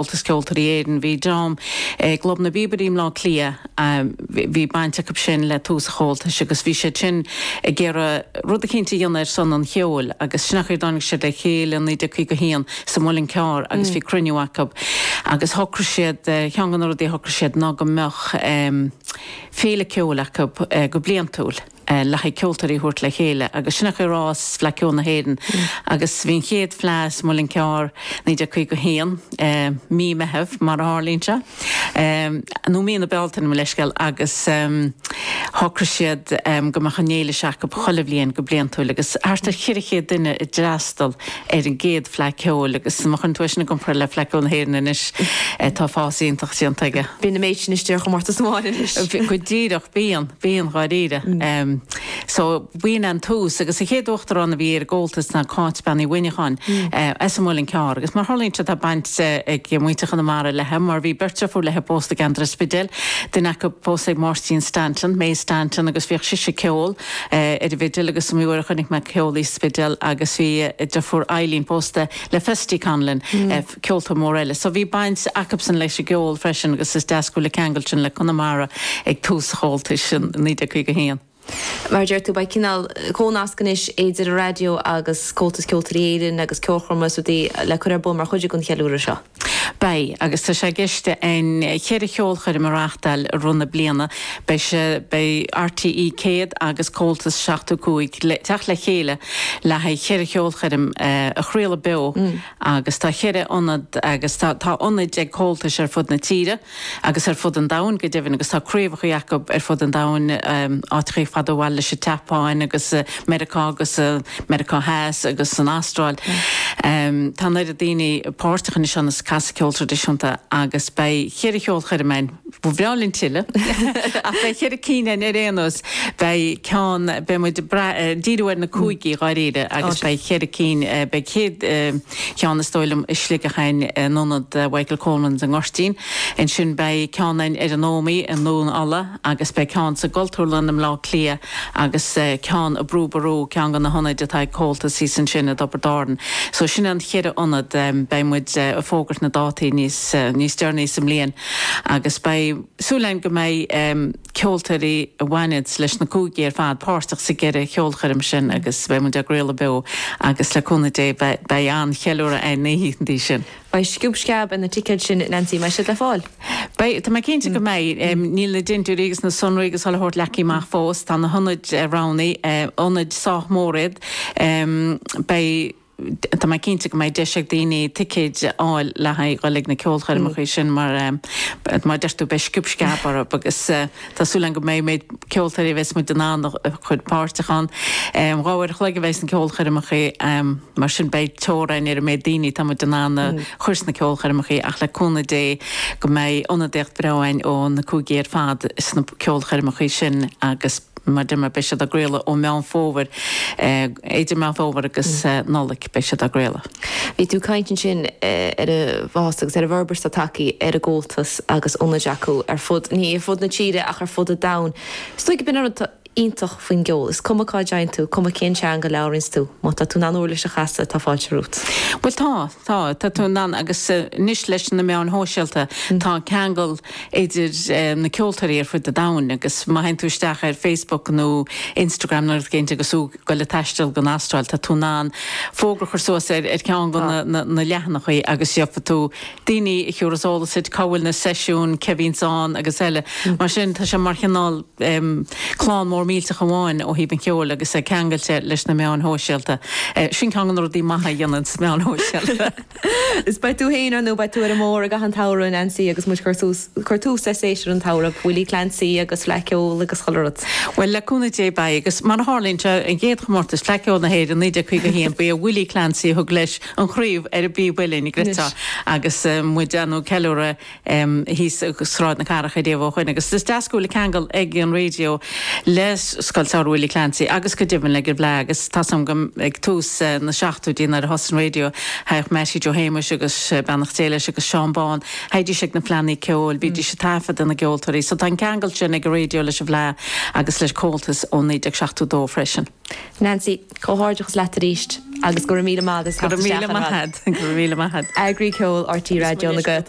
Comhaltas Ceoltóirí Éireann. Bhí dream i gClub na bPíobairí i mBleá Cliath, bhí baint acu sin le tús an Chomhaltais agus bhí siad sin ag iarraidh rud eicínt a dhéanamh ar son an cheoil agus sin an chaoi ar tháinig siad le chéile i 1951 sa Muileann Cearr agus bhí cruinniú acu agus shocraigh siad, cheann de na rudaí a shocraigh siad ná go mbeadh féile ceoil acu go bliantúil. le haghaidh ceoltóirí a thabhairt le chéile agus sin an chaoi ar fhás Fleadh Ceoil na hÉireann agus bhí an chéad fleadh sa Muileann Cearr 1951 Mí Meitheamh mar a tharlaíonn sé nó Mí na Bealtaine mo leithscéal agus shocraigh siad go mbeadh an fhéile seo acu chuile bhliain go bliantúil agus thart ar cheithre chéad duine a d'fhreastal ar an gcéad Fleadh Ceoil agus má chuireann tú é sin i gcomparáid le Fleadh Ceoil na hÉireann anois tá fás iontach déanta aige. Bíonn an méid sin istigh ar chomórtas amháin anois. Go díreach, bíonn, bíonn dháiríre. So b'in an tús agus an chéad uachtarán a bhí ar an gComhaltas ná Cáit Bean Uí Mhuineacháin as an Muileann gCearr agus mar a tharlaíonn sé tá baint ag muintir Chonamara léi mar bhí beirt deirfiúr léi pósta i gceantar an Spidéil, duine acu pósta ag Máirtín Stanton, May Stanton, agus bhíodh sise ag ceol. ar an bhfidil agus is iomaí uair a chonaic mé ag ceol í sa Spidéal agus bhí a deirfiúr Eileen pósta le Festy Conlon, ceoltóir mór eile, so bhí baint acubsan leis an gceol freisin agus is deas go bhfuil an ceangal sin le Conamara ag tús an Chomhaltais in 1951. Mar a deir tú, beidh cineál comhnasc anois idir an raidió agus Comhaltas Ceoltóirí Éireann agus ceolchoirmeacha is rudaí le cur ar bun mar chuid den cheiliúradh seo. Beidh, agus tá sé i gceist againn cheithre cheolchoirm a reáchtáil i rith na bliana. Beidh sé, beidh RTÉ 100 agus Comhaltas 75 ag teacht le chéile le haghaidh cheithre cheolchoirm a chraoladh beo agus tá cheithre ionad agus tá tá ionaid ag Comhaltais ar fud na tíre. agus ar fud an domhain go deimhin agus tá craobhacha acu ar fud an domhain, áiteachaí fada ó bhaile leis an tSeapáin agus Meiriceá agus Meiriceá Theas agus san Astráil. Tá an oiread daoine páirteach anois ann is ag casadh ceol traidisiúnta agus beidh cheithre cheolchoirm ann, ba bhreá linn tuilleadh ach beidh cheithre cinn ann ar aon nós, beidh ceann, beidh muid ag brath, díriú ar na cúigí dháiríre agus beidh cheithre cinn, beidh an chéad, cheann is dóigh liom i Sligeach ainn in ionad Mhichael Coleman's i nGoirtín. Ansin beidh ceann ainn ar an Ómaí i nDún Ulla agus beidh ceann sa gCultúrlann i mBleá Cliath agus ceann i Brú Ború, ceann de na hionaid atá ag Comhaltas thíos ansin i dTiobraid Árann. So sin é an cheithre ionad. Beidh muid ag fógairt na dátaí níos níos deireanaí sa mbliain agus beidh súil ainn go mbeidh. ceoltóirí a bhaineanns leis na cúigí ar fad páirteach sa gceithre cheolchoirm sin agus beidh muid á gcraoladh beo agus le cúnamh Dé beidh an-cheiliúradh ar na hoícheantaí sin. Beidh sciob sceab ar na ticéid sin Neansaí, an mbeidh siad le fáil? Beidh, tá mé cinnte go mbeidh. Níl na dintiúirí agus na sonraí agus chuile shórt leagtha amach fós, tá na hionaid roghnaithe, ionaid sách mór iad. Beidh. Tá mé cinnte go mbeidh deis ag daoine ticéid a fháil le haghaidh dhul ag na ceolchoirmeacha sin mar mar a deir tú beidh sciob sceab orthu agus tá súil agam go mbeidh méid ceoltóirí a bheas muid in ann a chur páirteach ann. Dhá uair a chloig a bheidh sna ceolchoirmeacha mar sin beidh teorainn ar an méid daoine atá muid in ann a chur sna ceolchoirmeacha ach le cúnamh Dé go mbeidh ionadaíocht bhreá againn ó na cúigí ar fad sna ceolchoirmeacha sin agus Madema beidh siad á gcraoladh ó Meán Fómhair idir Meán Fómhair agus Nollaig beidh siad á gcraoladh. Bhí tú ag caint ansin ar an bhfás agus ar an bhforbairt atá tagtha ar an gComhaltas agus ionaid acu ar fud, ní ar fud na tíre ach ar fud an domhain. Is dóigh gurb in an rud atá iontach faoin gceol, is cuma cá dtéann tú, cuma cén teanga a labhraíonns tú, má tá tú in ann uirlis a chasadh, tá fáilte romhat. Bhuel tá, Tá, tá tú in ann agus anois leis na meáin shóisialta tá ceangal idir na ceoltóirí ar fud an domhain agus má théann tú isteach ar Facebook nó Instagram nó rud éigin agus tú ag dul ag taisteal don Astráil tá tú in ann fógra a chur suas ar cheann de na leathanaigh agus gheobhaidh tú daoine a thabharfas eolas duit cá bhfuil na seisiúin, cé a bhíonns ann agus eile. Mar sin tá sé mar chineál. clann mór millteach amháin ó thaobh an cheoil agus é ceangailte leis na meáin shóisialta. Sin ceann de na rudaí maithe a dhéanann na meáin shóisialta. Is beidh tú féin ar nó beidh tú ar an mbóthar i gcaitheamh an tsamhraidh, a Nancy, agus muid ag cur tús le séasúr an tsamhraidh, Willie Clancy agus Fleadh Cheoil agus chuile rud. Bhuel, le cúnamh Dé beidh, agus mar a tharlaíonn sé, an chéad chomórtas Fleadh Cheoil na hÉireann 1951, ba é Willie Clancy a thug leis an chraobh ar an bpíb uillinn, a gcreidfeá agus muid ag déanamh ceiliúradh. thíos i Sráid na Cathrach riamh ó shoin agus is deas go bhfuil ceangal ag an raidió le Scoil Samhraidh Willie Clancy agus go deimhin leis an bhFleadh agus tá a fhios agam ag tús na seachtóidí nuair a thosaigh an raidió thagadh Meaití Joe Shéamuis agus beannacht Dé leis agus Seán Bán theighdís ag na fleannaí ceoil bhídís ag taifeadadh na gceoltóirí so tá an ceangal sin ag an raidió leis an bhFleadh agus le Comhaltas ó 1972 freisin. Nancy, comhghairdeachas leat arís agus go raibh míle maith as a theacht isteach againn. Go raibh míle maith agat. Eagraí ceoil RTÉ Raidió na Gaeltachta.